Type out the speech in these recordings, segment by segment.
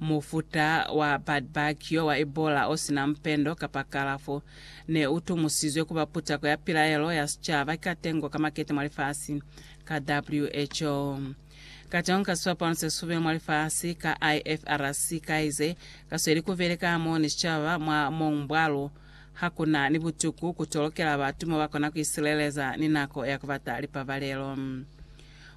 Mufuta wa bad bug yo wa Ebola o si na mpendo kapa kalafo, ne u tumusizwe ku ba putako ya pilaelo ya sicaba ka tengo ka makete mwa lifasi, ka WHO. Ka tengo ka sipapano se sube mwa lifasi, ka IFRC, kaize ka sweli ku beleka hamoho ni sicaba mwa mounbwalo, ha ku na ni butuku ku tolokela batu mo ba kona ku isileleza ni nako ya ku bata lipabalelo.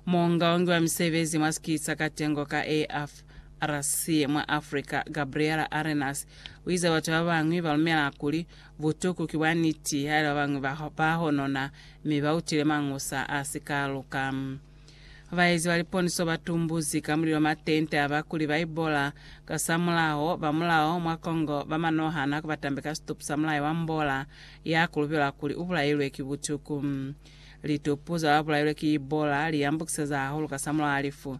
Muungaungi wa misebezi mwa sikisa ka tengo ka AF. RC mwa Africa, Gabriela Arenas, u ize batu ba bañwi ba lumela kuli butuku ki bwa niti haili ba bañwi ba ba honona mi ba utile mañusa a si ka luka. Baezi ba liponiso ba tumbuzi ka mulilo matente a ba kuli ba ibola kasamulaho ba mulao mwa Congo ba manohana ku ba tambe ka situpu sa mulai wa mbola ya kulubelwa kuli u bulailwe ki butuku. Litupu za ba bulailwe ki ibola li yambukiseza hahulu kasamulaho a lifu.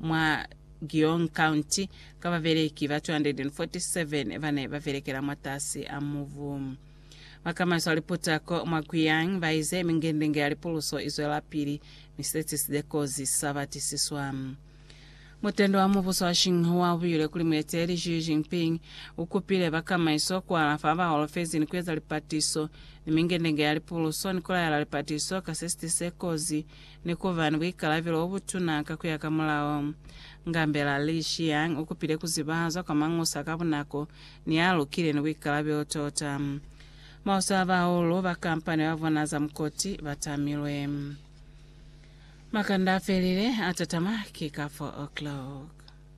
Mwa Gyeong County, ka babeleki ba 247 ba ne ba belekela mwatasi a mubu. Bakamaiso a liputako mwa Guyang ba ize mingendenge ya lipuluso i zwelapili, mi siteti si dekozi sa batisiswa. Mutende wa mubuso wa Xinhua u buile kuli mueteli Xi Jinping u kupile bakamaiso ku alafa ba holofezi ni ku eza lipatiso ni mingendenge ya lipuluso ni ku laela lipatiso ka sisiti se kozi ni ku ba ni buikalabelo bo butuna ka ku ya ka mulao. Ngambela Li Xiang u kupile ku ziba zwa kwa Mañusa ka bunako ni ya lukile ni buikalabelo tota. Maosi a bahulu ba kampani ba bona za mukoti ba tamilwe. Makanda a felile a tatama ki ka 4 o'clock.